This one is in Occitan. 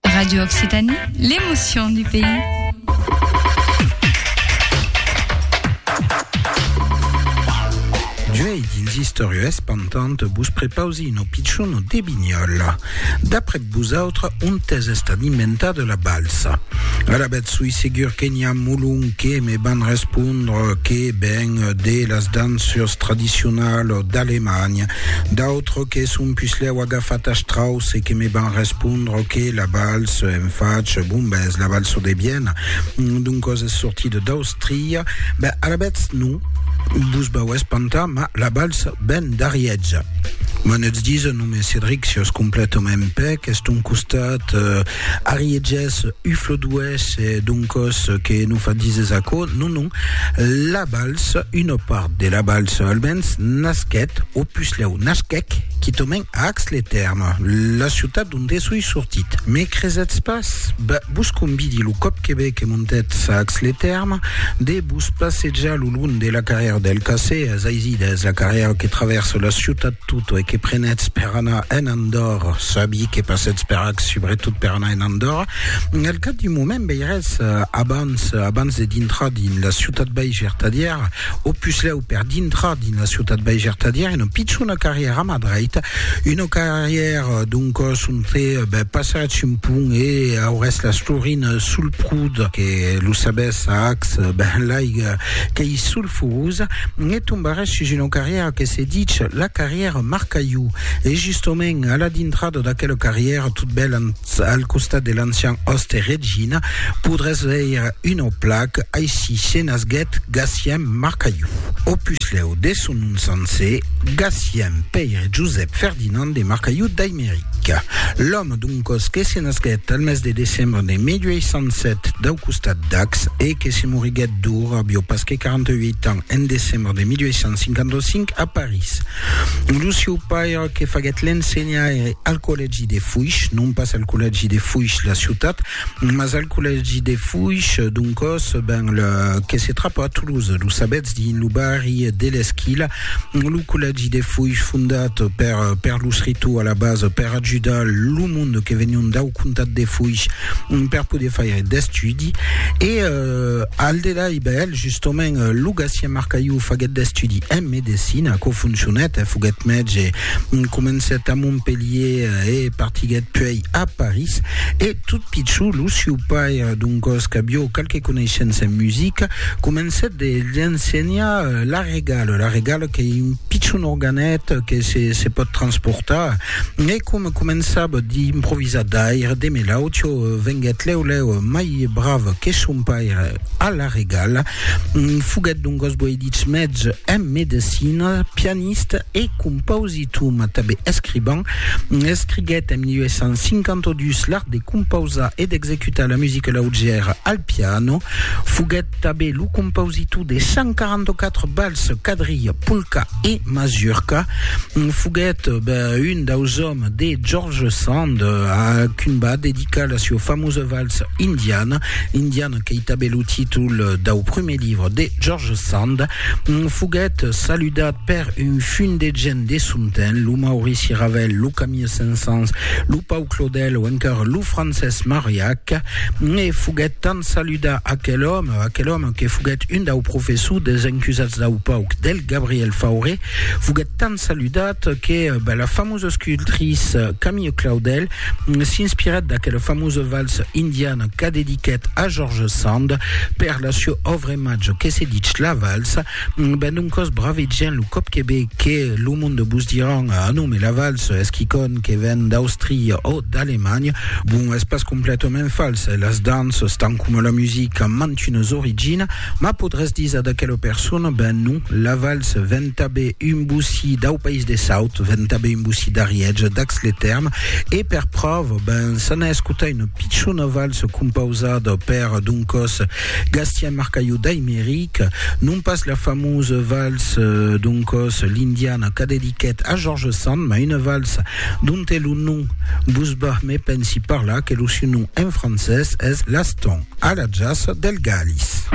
Radio Occitanie, l'emotion du pays. D'uei dins Istòria Espantant vos prepausi no pichon no de Binyola. D'après vosautres, on t'es estat inventat la balsa? Ara bet sui segur que n'hi a molon que me van respondre que ben de las dançures tradicionales d'Alemanha, d'autres que son puslèu agafat a Strauss Se que me van respondre que la vals en fach, bon, ben, es la valso de Viena, doncos es sortida d'Austria, ben, alavetz non vos vau espantar, ma la vals ven d'Ariètge. M'an ets disa, non me Cedric, si os completament pèc, es ton costat eh, ariètges, ufloduès, e doncos que non fa dises aquò, non, non, la vals, una part de la vals almens, nasquèt, o puslèu nasquèc, quitament, Ax-les-Thermes, la ciutat donde soi sortit. Me cresetz pas? Bah, vos convidi, lo còp que ve que montetz a Ax-les-Thermes, de vos passejar lo long de la carrièra del Cassé, es aisit, es la carrièra que travèrsa la ciutat tota e que prenètz per anar en Andòrra. Sabi que passètz per Ax subretot per anar en Andòrra. Al cap d'un moment veirètz, abans, abans de dintrar dins la ciutat bèi gertadièra, au puslèu, per dintrar dina ciutat veiger tadièr una pichona carrièr a ma dreita, una carrièr d'un còs onte ben passatz un pont e aurès las florinas sul prud que lo sabès a Ax ben l'aiga qu'ei sulfurosa e tombarès sus una carrièra que se dich la carrièra Marcaiu e justament a la dintrada d'aquela carrièra tot bèl Ets al costat de l'ancian òste Regina, podràs veire una placa, Aicí se nasguèt Gacien Marcaiu. Opuslèu de son nom sancer, Gacien Pèire Josèp Ferdinand de Marcaiu d'Aimeric. L'òme d'un còs que se nasguèt al mes de decembre de 1807 dau costat d'Ax e que se moriguèt d'or avió pas que 48 ans en decembre de 1855 a París. Lo sieu paire que faguèt l'ensenhaire al collège collègi de Foish, non pas al collègi de Foish, la ciutat, mas al collègi de Foish, doncòs, ben, le, que se trapa a Toulouse, lo sabètz, dins lo barri de l'Esquila, lo collègi de Foish fondat per, per los Ritou a la base, per ajudar lo monde que venion dau comtat de Foish per poder faire d'estudi, e euh, al delà, e ben, justement, lo Gatien Marcaiu faguèt d'estudi en medecina, aquò foncionèt, eh, foguèt mètge, Comencèt a Montpelhier e partiguèt puèi a París. E tot pichon, lo sieu paire, d'un còs qu'avió qualque coneishença en musica, comencèt de l'ensenhar la regala, la regala qu'ei un pichon organèt que se se pòt transportar. E com començava d'improvisar d'aire de Melaucho, venguèt lèu lèu mai brave que son paire a la regala. Foguèt doncas guai dich mètge en medecina, pianista e compausitò, mas tanben escrivan. Escriguèt en 1852 l'art de compausar e d'executar la musica laugèra al piano. Foguèt tanben lo compausitò de 144 balses, quadrilha, polca e mazurca. Foguèt un daus òmes de George Sand, a quin va dedicar la sua famosa valsa indiana, l'indiana qu'ei tanben lo títol dau prumèr libre de George Sand, foguèt saludat per un fum de gent de son temps, lo Maurici Ravel, lo Camille Saint-Saëns, lo Pau Claudel o encara lo Francés Mariac, e foguèt tant saludat aquel òme, aquel òme que foguèt un dau professors dels encusats dau pauc, del Gabriel Fauré, foguèt tant saludat que, ben, la famosíssima famós escultris Camille Claudel s'inspirèt d'aquela famosa valsa indiana qu'a dediquèt a George Sand per la sua òvra imatge que se ditz La Valsa. Ben doncòs, bravegièn lo còp que ve que lo monde vos diràn Ah non, mais la valsa es quicòn que ven d'Austria o d'Alemanha. Bon, es pas completament fals, e las danças, tant coma la musica, an mantunas originas, mas podràs díser d'aquela persona, Ben non, la valsa ven ventabe un bossí dau país de Saut, ventabe un bossí d'Ariège, d'Ax-le-Tèrme, e per pròva, ben, s'ana escotar una pichona valsa compausada per d'un còs Gastien Marcayou d'Aimeric, non pas la famosa valsa d'un còs L'Indiana qu'a dediquèt a Georges Sand, mas una valsa donte lo nom vos va, me pensi, parlar, que lo siu nom en francés es L'Aston a la Jaça del Galís.